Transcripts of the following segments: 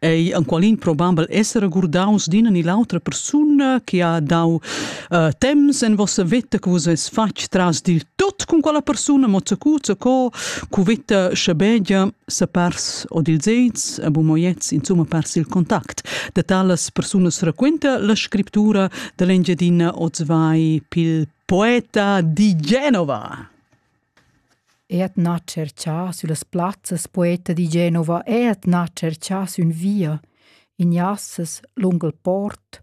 ei enqualin probabel esser regurdaus d'ina ni l'autra persuna che ha dau uh, temps en vossa vita che vus es fatg tras dil tut con quella persuna mozzacu co cu vita schabegia se pers o dil zez a bumoiets insomma pers il contact de talas personas raquenta la scrittura dell'engiadina Ozvai pil poeta di Genova Eat nà tscherchà süllas plazzas poeta di Genova eat nà tscherchà sün via in jassas lung il port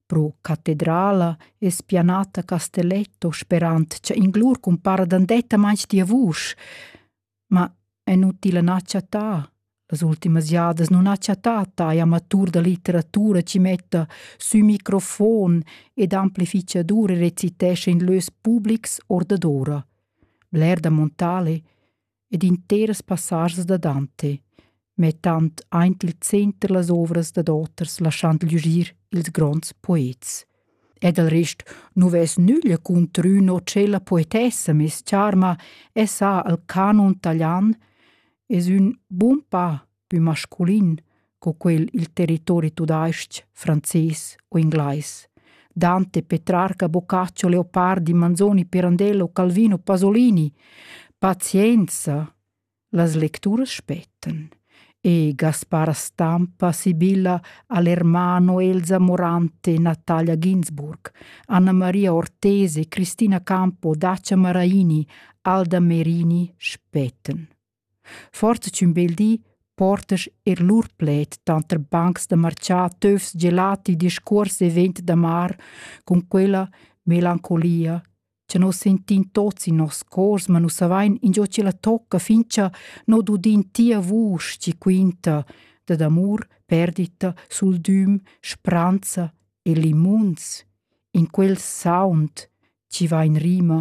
pro catedrala e spianata Castelletto sperand cha in lur cumpara dandetta mans tia vusch, ma è inutile na chattà Las ultimas jadas non ha chattà tai amatur da litteratura chi metta sü microfon ed amplifichadur e recitescha in lös publics or dadora. Bler da Montale ed interas passasas da Dante, mettand aint il center las ovras dad oters, laschand lügir ils gronds poets. Ed al rest nu vess nüglia contr ün o tschella poetessa, mes charma, e sa al canon talian, es ün bun pa pü masculin co quel i'l territori tudais-ch, frances o inglais. Dante, Petrarca, Boccaccio, Leopardi, Manzoni, Pirandello, Calvino, Pasolini. Pazienza! Las lecturas spettan. E Gaspara Stampa, Sibilla, Alermano, Elsa Morante, Natalia Ginsburg, Anna Maria Ortese, Cristina Campo, Dacia Maraini, Alda Merini spettan. Forza ch'ün bel di portas er lur pled tanter bancs da marcià töfs gelati discuors event d'amar con quella melancolia cha nos sentin tots in nos cors, ma nu savain ingio chi la tocca fincha not udin tia vusch chi quinta dad amur, perdita, suldüm, spranza e limunz in quel sound chi va in rima